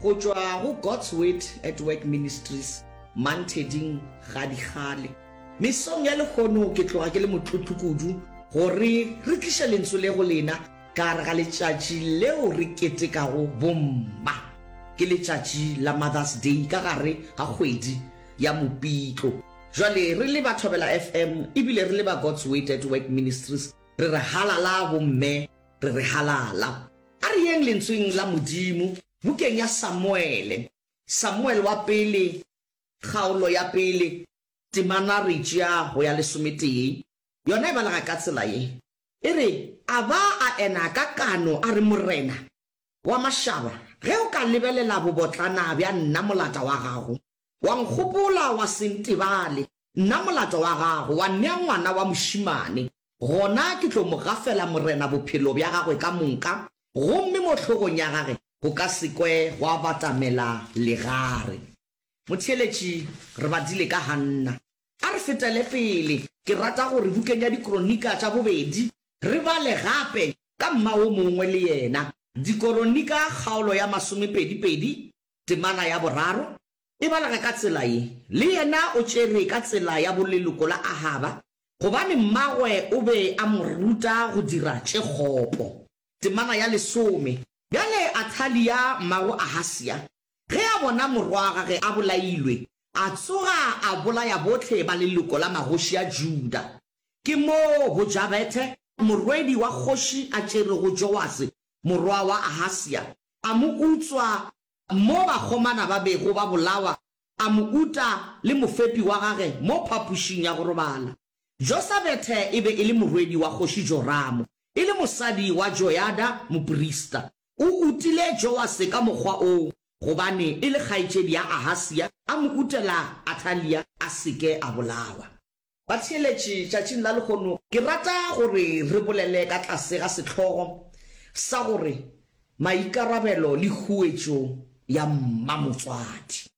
Go tšwa go God's Word at Work Ministries, Mantheding ga dikgale. Mesong ya lehono ke tloga ke le motlotlo kudu gore re tliša lentsu le go lena ka gare ga letšatši leo re ketekago bomma. Ke letšatši la Mother's Day ka gare ga kgwedi ya Mopitlo. Bjale re le ba Thobela FM ebile re le ba God's Word at Work Ministries re re halala bomme. re re halala. A re yeng Lentsweng la Modimo, bukeng ya Samuele, Samuele wa Pele, kgaolo ya pele, temana re tšea go ya lesometee. Yona e balega ka tsela ye. E re, A ba a ena ka kano, a re, Morena wa mašaba, ge o ka lebelela bobotlana bja nna, molata wa gago, wa nkgopola, wa se ntebale. Nna molato wa gago wa nnea ngwana wa mošemane, gona ke tlo mo gafela Morena bophelo bja gagwe ka moka, gomme mo hlogong ya gage go ka se kwe gwa batamela legare. Motheeletši, Re badile ka Hanna. A re fetele pele, ke rata gore bukeng ya Dikronika tša Bobedi re bale gape ka mma wo mongwe le yena, Dikoronika kgaolo ya masomepedi-pedi, temana ya boraro, E balege ka tsela ye, Le yena o tšere ka tsela ya boleloko la Ahaba, gobane mmagwe o be a mo ruta go dira tše kgopo. Temana ya lesome. Bjale Athalia mmago Ahasia, ge a bona morwagage a bolailwe, a tsoga a bolaya bohle ba leloko la magoši a Juda. Ke moo Bojabethe, morwedi wa kgoši a tšerego Joase morwa wa Ahasia, a mo utswa Mo bakgomana ba bego ba bolawa, a mo uta le mofepi wa gage mo phapošing ya go robala. Josabethe e be e le morwedi wa kgoši Joramo, e le mosadi wa Joyada moprista. O utile Joase ka mokgwa o gobane e le kgaetšedi ya Ahasia, a mo utela Athalia a se ke a bolawa. Batheeletši tšatšing la lehono, ke rata gore re bolele ka tlase ga sehlogo sa gore Maikarabelo le Huetšo ya Mmamotswadi,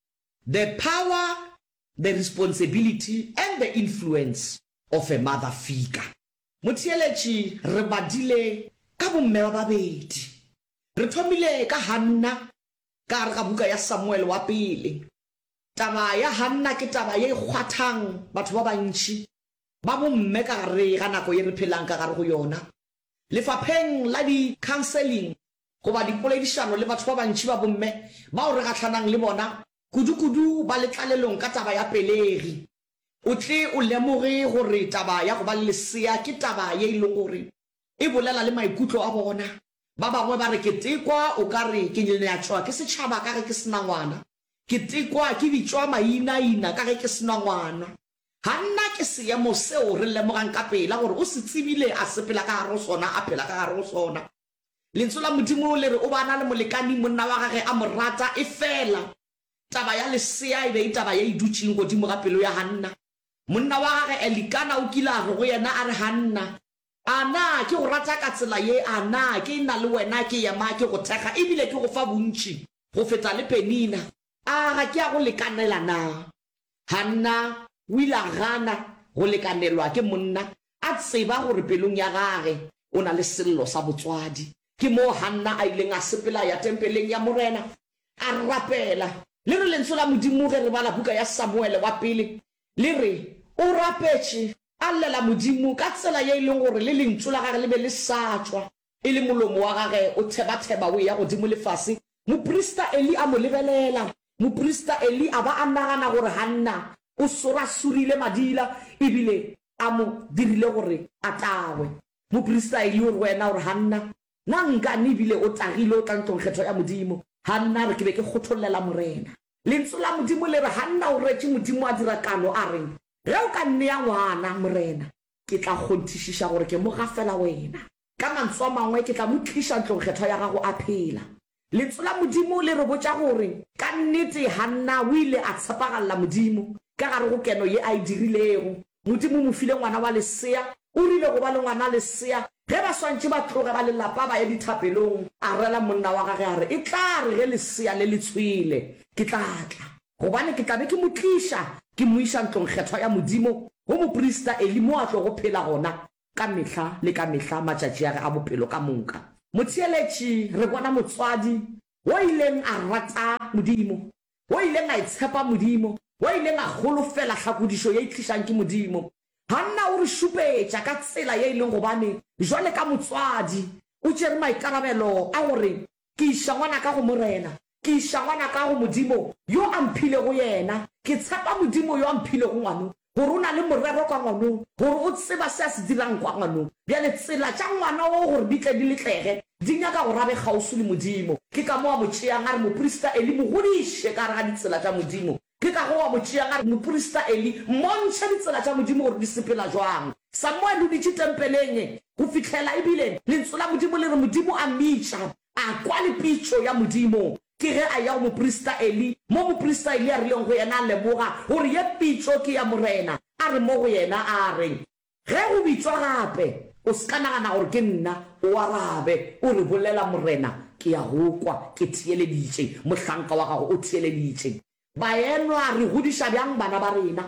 The Power, the Responsibility and the Influence of a Mother Figure. Motheeletši, re badile ka bomme ba babedi. Re thomile ka Hanna ka gare ga buka ya Samuele wa Pele, Taba ya Hanna ke taba ye e kgwathang batho ba bantši ba bomme ka gare ga nako ye re phelang ka gare go yona. Lefapheng la di-counseling goba dipoledišano le batho ba bantši ba bomme bao re gahlanang le bona, kudu-kudu ba le tlalelong ka taba ya pelegi. O tle o lemoge gore taba ya go ba le lesea ke taba ye e lego gore e bolela le maikutlo a bona. Ba bangwe ba re ketekwa o ka re ke nyonyatšwa ke setšhaba ka ge ke se na ngwana. Ke tekwa ke bitšwa mainaina ka ge ke se na ngwana. Ga nna ke seemo seo re lemogang ka pela gore o se tsebile a sepela ka gare go sona, a phela ka gare go sona. Lentso la Modimo le re o ba na le molekani, monna wa gage a mo rata, efela taba ya lesea e be e taba ye e dutšeng godimo ga pelo ya Hanna. Monna wa gage Elikana o kile a re go yena a re, Hanna, A na ke go rata ka tsela ye? A na ke e-na le wena? Ke ema ke go thekga e bile ke go fa bontši go feta le Penina. A ga ke a go lekanela na? Hanna o ile a gana go lekanelwa ke monna, a tseba gore pelong ya gage o na le sello sa botswadi. Ke moo Hanna a ileng a sepela a ya tempeleng ya Morena, a rapela. Le re Lentswe la Modimo ge re bala buka ya Samuele wa Pele, Le re, O rapetše, a llela Modimo ka tsela ye e lego gore le lentšu la gage le be le sa tšwa, e le molomo wa gage o thebatheba o eya godimo le fase. Moprista Eli a mo lebelela. Moprista Eli a ba a nagana gore Hanna o sorasurile madila e bile a mo dirile gore a tagwe. Moprista Eli o re go yena gore, Hanna, Na nka ne bile o tagile o tla ntlong kgetho ya Modimo? Hanna a re, Ke be ke kgothollela Morena. Lentsu la Modimo le re, Hanna, o retše Modimo a dira kano a reng, Ge o ka nnea ngwana, Morena, ke tla kgonthišiša gore ke mo gafela wena. Ka mantsu a mangwe, ke tla mo tliša ntlong kgetho ya gago a phela. Lentso la Modimo le re botša gore ka nnete Hanna o ile a tshepagalela Modimo. Ka gare go keno ye a e dirilego, Modimo o mo file ngwana wa lesea. O rile go ba le ngwana lesea. Ge ba swantše ba tloge ba lelapa ba ye dithapelong, a rela monna wa gagwe a re, E tla re ge lesea le le tshwele, ke tla tla, gobane ke tla be ke mo tliša, ke mo iša ntlongkgethwa ya Modimo, go moprista Eli mo a tlogo phela gona. Ka mehla le ka mehla matšatši a ge a bophelo ka moka. Motheeletši, re bona motswadi wo ileng a rata Modimo, wo ileng a itshepa Modimo, wo ileng a holofela hlakodišo ye e tlišang ke Modimo. Hanna o re šupetša ka tsela ye e leng gobane, jwale ka motswadi, o tšere maikarabelo a gore Ke iša ngwanaka go Morena, ke iša ngwanaka go Modimo yo a mphilego yena. Ke tshepa Modimo yo a mphilego ngwano, gore o na le morero ka ngwanong, gore o tseba se a se dirang kwa ngwanong. Bjale tsela tša ngwana wo gore di tle di letlege, di nyaka gore a be kgauswi le Modimo. Ke ka mo a mo tšeang a re moprista Eli mo godiše ka gare ga ditsela tša Modimo. Ke ka go wa mo tšea gare moprista Eli, mmontšhe ditsela tša Modimo gore di sepela jwang. Samuele o dutše tempeleng go fihlela e bile Lentswe la Modimo le re Modimo a mmitša. A kwa le pitšo ya Modimo. Ke ge a eya go moprista Eli, mo moprista Eli a rileng go yena a lemoga gore ye pitšo ke ya Morena, a re mo go yena, a re. Ge o bitšwa gape, o se ka nagana gore ke nna, o arabe, o re, Bolela, Morena, ke a go kwa, ke theeleditše, mohlanka wa gago o theeleditše. Bayenwa, re godiša bjang bana ba rena?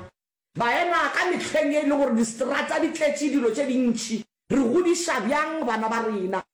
Bayenwa, ka mehleng ye e le gore diseterata di tletše dilo tše dintši, re godiša bjang bana ba rena?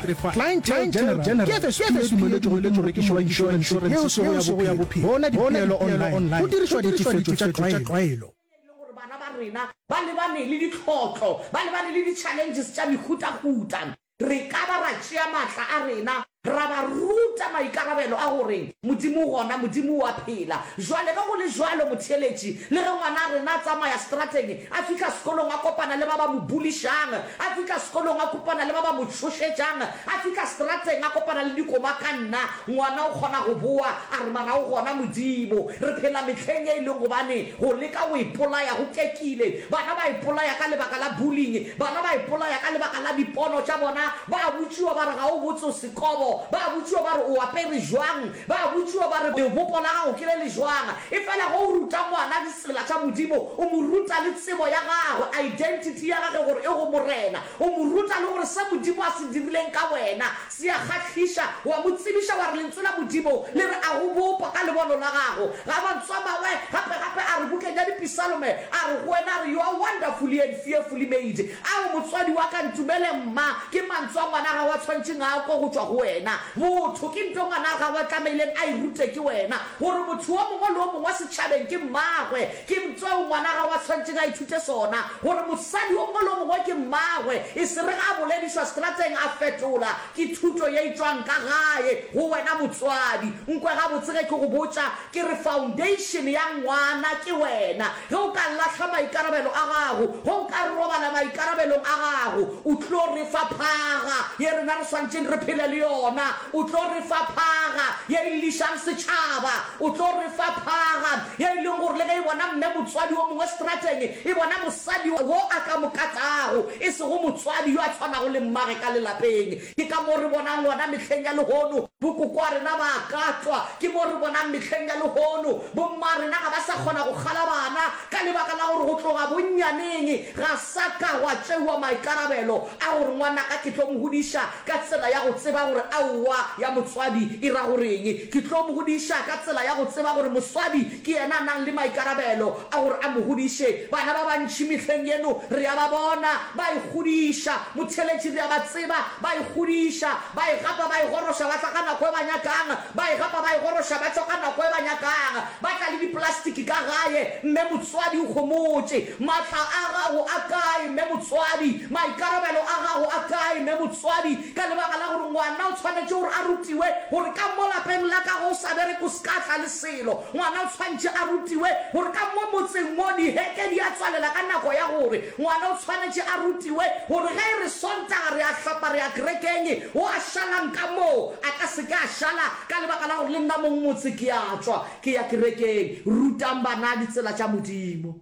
Clientele General ke FSP e dumeletšwego ke morekiši wa inšorense yeo sego ya bophelo. Bona dipeelo online go dirišwa ditefetšo tša tlwaelo. E le gore bana ba rena ba lebane le ditlhotlo, ba lebane le di-challenges tša mehutahuta, re ka ba ra tšea maatla a rena ra ba ruta maikarabelo a gore Modimo o gona, Modimo o a phela. Bjale, ge go le bjalo, motheeletši, le ge ngwana a rena a tsamaya seterateng, A fihla sekolong a kopana le ba ba mo bulišang, a fihla sekolong a kopana le ba ba mo tšhošetšang, a fihla seterateng a kopana le dikoba ka nna. Ngwana o kgona go boa a re, Mara o gona Modimo. Re phela mehleng ye e leng gobane go leka go ipolaya go kekile. Bana ba ipolaya ka lebaka la bullying, bana ba ipolaya ka lebaka la dipono tša bona. Ba a botšiwa ba re, Ga o botse o sekobo. Ba a botšiwa ba re, O apere jwang? Ba a botšiwa ba re, Lebopo la gago ke le le jwang? Efela ge o ruta ngwana tsela tša Modimo, o mo ruta le tsebo ya gagwe, identity ya gage gore e go Morena. O mo ruta le gore se Modimo a se dirileng ka wena se a kgahliša. O a mo tsebiša wa re Lentswe la Modimo le re a go bopa ka lebono la gago. Ga mantswe a mangwe, gape-gape a re bukeng ya Dipisalome, a re go wena, a re, You are wonderfully and fearfully made. Ao, motswadi wa ka, ntumele, mma, ke mantswe a ngwana gago a tshwantšeng a kwe go tšwa go wena. Botho ke nto ngwana gago a tlameileng a e rute ke wena. gore motho wo mongwe le wo mongwe wa setšhabeng ke mmagwe, ke tseo ngwana gago a swanetšeng a ithute sona, gore mosadi wo mongwe le wo mongwe ke mmagwe, e se re ge a boledišwa setrateng a fetola. Ke thuto ye e tšwang ka gae go wena motswadi. Nkwe gabotse ge ke go botša, ke re foundation ya ngwana ke wena. Ge o ka lahla maikarabelo a gago, ge o ka robala maikarabelong a gago, O tlo re fa phaga ye rena re swanetšeng re phele le yona. O tlo re fa phaga ye e llišang setšhaba. O tlo re fa phaga ye e leng gore le ge e bona mme motswadi wo mongwe strateng, e bona mosadi wo a ka mo katago, e sego motswadi yo a tshwanago le mmage ka lelapeng. Ke ka mo re bonang gona mehleng ya lehono, bokoko a rena ba a katwa. Ke mo re bonang mehleng ya lehono, bomma a rena ga ba sa kgona go kgala bana ka lebaka la gore go tloga bonnyaneng ga sa ka gwa tšewa maikarabelo a gore ngwanaka ke tlo mo godiša ka tsela ya go tseba gore aowa ya motswadi e ra goreng, ke tlo mo godiša ka tsela ya go tseba gore moswadi Ke yena a nang le maikarabelo a gore a mo godiše. Bana ba bantši mehleng yeno re a ba bona ba ikgodiša. Motheeletši re a ba tseba ba ikgodiša, ba e gapa, ba e goroša, ba tla ka nako e ba nyakang, ba e gapa, ba e goroša, ba tšwa ka nako e ba nyakang. Ba tla le dipolastiki ka gae, mme motswadi o homotše. Maatla a gago a kae, mme motswadi? Maikarabelo a gago a kae, mme motswadi? Ka lebaka la gore ngwana o tshwanetše gore a rutiwe gore ka mo lapeng la ka ge o sa bereke o se ka tla le Selo, ngwana o tshwanetše a rutiwe gore ka mo motseng mo diheke di a tswalela ka nako ya gore ngwana o tshwanetše a rutiwe gore ge e re Sontaga re a hlapa re ya kerekeng, wo a šalang ka moo a ka se ke a šala ka lebaka la gore le nna mong motse ke a tšwa ke ya kerekeng. Rutang bana ditsela tša Modimo.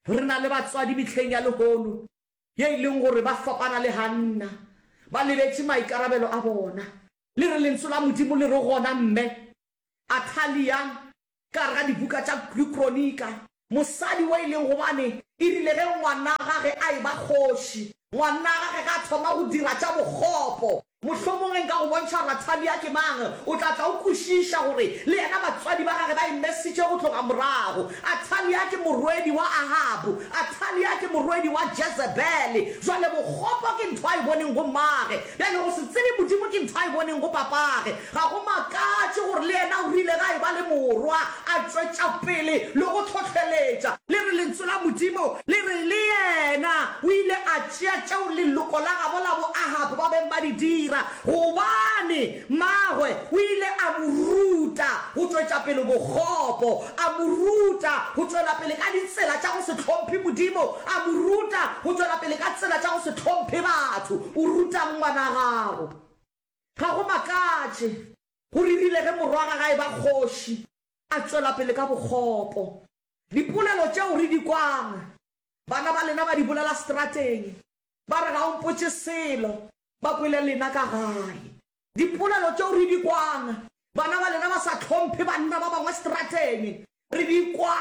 Re na le batswadi mehleng ya lehono ye e leng gore ba fapana le Hanna, ba lebetše maikarabelo a bona. Le re Lentswe la Modimo le re gona, Mme, Atalia, ka gare ga dibuka tša Kronika, mosadi wo e leng gobane e rile ge ngwana gage a eba kgoši, ngwana gage ga a thoma go dira tša bokgopo. Mohlomong ge nka go bontšha gore Atalia ke mang, o tla tla o kwešiša gore le yena batswadi ba gage ba e mesitše go tloga morago. Atalia ke morwedi wa Ahabu. Atalia ke morwedi wa Jezebele. Bjale bokgopo ke ntho a e boneng go mmagwe. Bjale go se tsebe Modimo ke ntho a e boneng go papagwe. Ga go makatše gore le yena o rile ge a eba le morwa a tšwetša pele le go hlohleletša. Le re Lentsu la Modimo le re, Le yena o ile a tšea tšeo leloko la gabo la boAhab ba beng ba di dira, gobane mmagwe o ile a mo ruta go tšwetša pele bokgopo, a mo ruta go tšwela pele ka ditsela tša go se hlomphe Modimo, a mo ruta go tšwela pele ka tsela tša go se hlomphe batho. O ruta'ng ngwana gago? Ga go makatše, go ririle ge morwa ga gae ba kgoši a tšwela pele ka bokgopo. Dipolelo tšeo re di kwang, bana ba lena ba di bolela strateng, ba re ga o mpotše selo, ba kwele lena ka gae. Dipolelo tšeo re di kwang, bana ba lena ba sa hlomphe banna ba bangwe strateng, re di kwa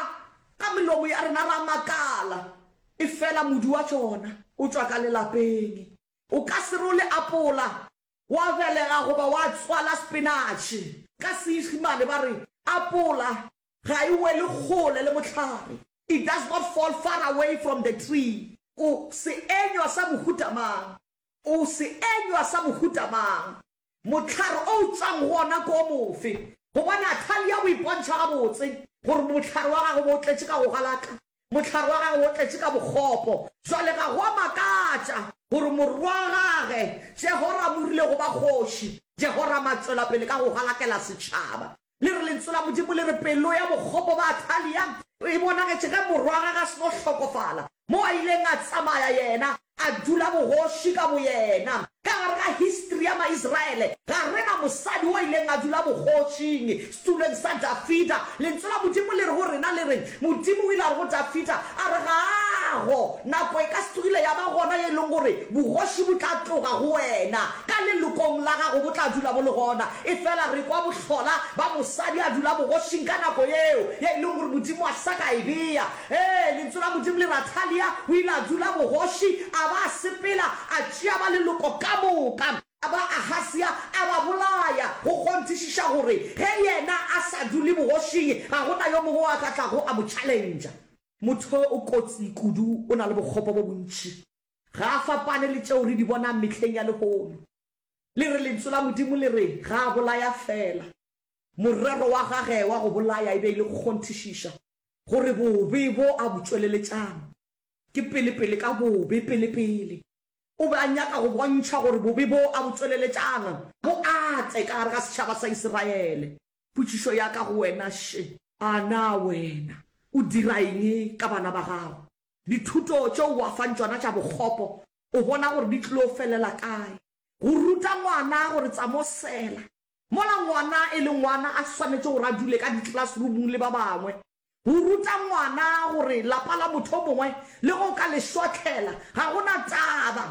ka melomo ya rena ra makala, efela modu wa tšona o tšwa ka lelapeng. O ka se role apola, wa belega goba wa tswala sepenatšhe. Ka Seišemane ba re, Apola ga e wele kgole le mohlare, It does not fall far away from the tree. O seenywa sa mohuta mang? O seenywa sa mohuta mang? Mohlare o utšang go ona ke o mofe? Gobane Athalia o ipontšha gabotse gore mohlare wa gagwe bo o tletše ka go galaka, mohlare wa gagwe wo o tletše ka bokgopo. Bjale ga go a makatša gore morwa wa gagwe Jehorama o rile go ba kgoši. Jehorama a tšwela pele ka go galakela setšhaba. Le re Lentso la Modimo le re pelo ya bokgopo ba Athalia e bonagetše ge morwa gagwe a seno hlokofala, mo a ileng a tsamaya yena a dula bogoši ka boyena. Ka gare ga histri ya Maisraele ga re na mosadi o ileng a dula bogošing setulong sa Dafida. Lentso la Modimo le re go rena le reng, Modimo o ile a re go Dafida, a re, Ga go, nako e ka se tlogile ya ba gona ye e leng gore bogoši bo tla tloga go wena. Ka lelokong la gago bo tla dula bo le gona, efela re kwa bohlola ba mosadi a dula bogošing ka nako yeo ye e lego gore Modimo a sa ka e bea. Ee, Lentsu la Modimo le re Athalia o ile a dula bogoši, a ba a sepela, a tšea ba leloko ka moka ba Ahasia a ba bolaya, go kgonthišiša gore ge yena a sa dule bogošing, ga go na yo mongwe o a ka tlago a mo tšhalentša. Motho o kotsi kudu, o na le bokgopo bo bontši. Ga a fapane le tšeo re di bonang mehleng ya lehono. Le re Lentso la Modimo le re ga a bolaya feela. Morero wa gage wa go bolaya e be e le go kgonthišiša gore bobe bo a bo tšweleletšang ke pelepele ka bobe. Pelepele o be a nyaka go bontšha gore bobe bo a bo tšweleletšang bo ate ka gare ga setšhaba sa Isiraele. Potšišo ya ka go wena, Še, a na wena o dira eng ka bana ba gago? Dithuto tšeo o a fang tšona tša bokgopo o bona gore di tlo felela kae? Go ruta ngwana gore tsa mo sela. Mola ngwana e le ngwana a swanetše gore a dule ka di-classroomong le ba bangwe. Go ruta ngwana gore lapa la motho o mongwe le ge o ka le šothlela ga go na taba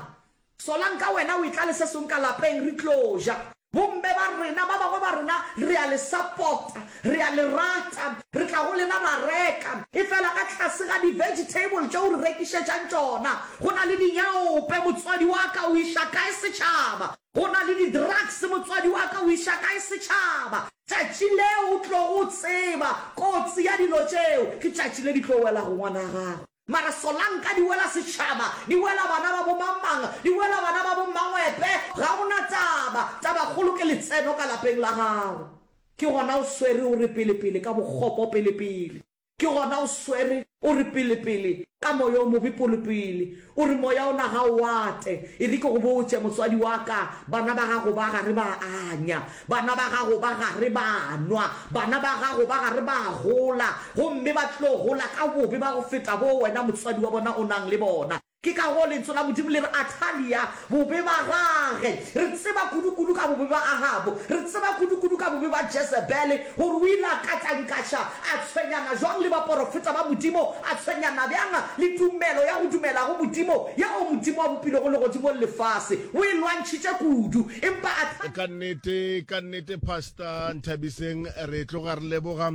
Solanka wena o e tla le se song ka lapeng re tlo ja. Bomme ba rena, ba bangwe ba rena re a le support-a, re a le rata, re tla go lena ra reka, efela ka tlase ga di vegetable tše o re rekišetšang tšona go na le dinyaope, motswadi wa ka o iša kae setšhaba, go na le di drugs, motswadi wa ka o iša kae setšhaba, tšatši leo o tlogo tseba kotsi ya dilo tšeo ke tšatši le di tlo welago ngwana gago. Mara solanka di wela setšhaba, di wela bana ba bo mang-mang, di wela bana ba bo mmangwepe, ga o na taba. Tabakgolo ke letseno ka lapeng la gago. Ke gona o swere o re pele-pele ka bokgopo pele-pele. Ke gona o swere o re pele-pele ka moya o mobe pole-pele. O re moya ona ga o ate. E re ke go botše, motswadi wa ka, bana ba gago ba ga re ba anya. Bana ba gago ba gare ba a nwa, bana ba gago ba gare ba a gola, gomme ba tlo gola ka bobe ba go feta boo wena motswadi wa bona o nang le bona. Ke ka goo Lentso la Modimo le re, Athalia, bobe ba gage! Re tseba kudukudu ka bobe ba Ahabo. Re tseba kudukudu ka bobe ba Jezebele, gore o ile a katankaša, a tshwenyana jwang le baporofeta ba Modimo, a tshwenyana bjang le tumelo ya go dumela go Modimo, yeo Modimo a bopilego legodimo le lefase. O e lwantšhitše kudu. Empa a tla. Ka nnete, ka nnete, Pastor Nthabiseng, re tloga re leboga.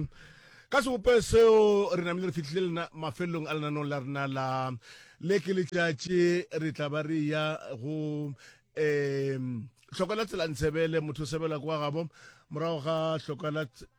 Ka sebope seo, re namile re fihlile lena mafelelong a lenanong la rena la le ke letšatši. Re tla ba re ya go um hlokwa la tsela ntshebele motho o sebela kwa gabo morago ga hlokwa la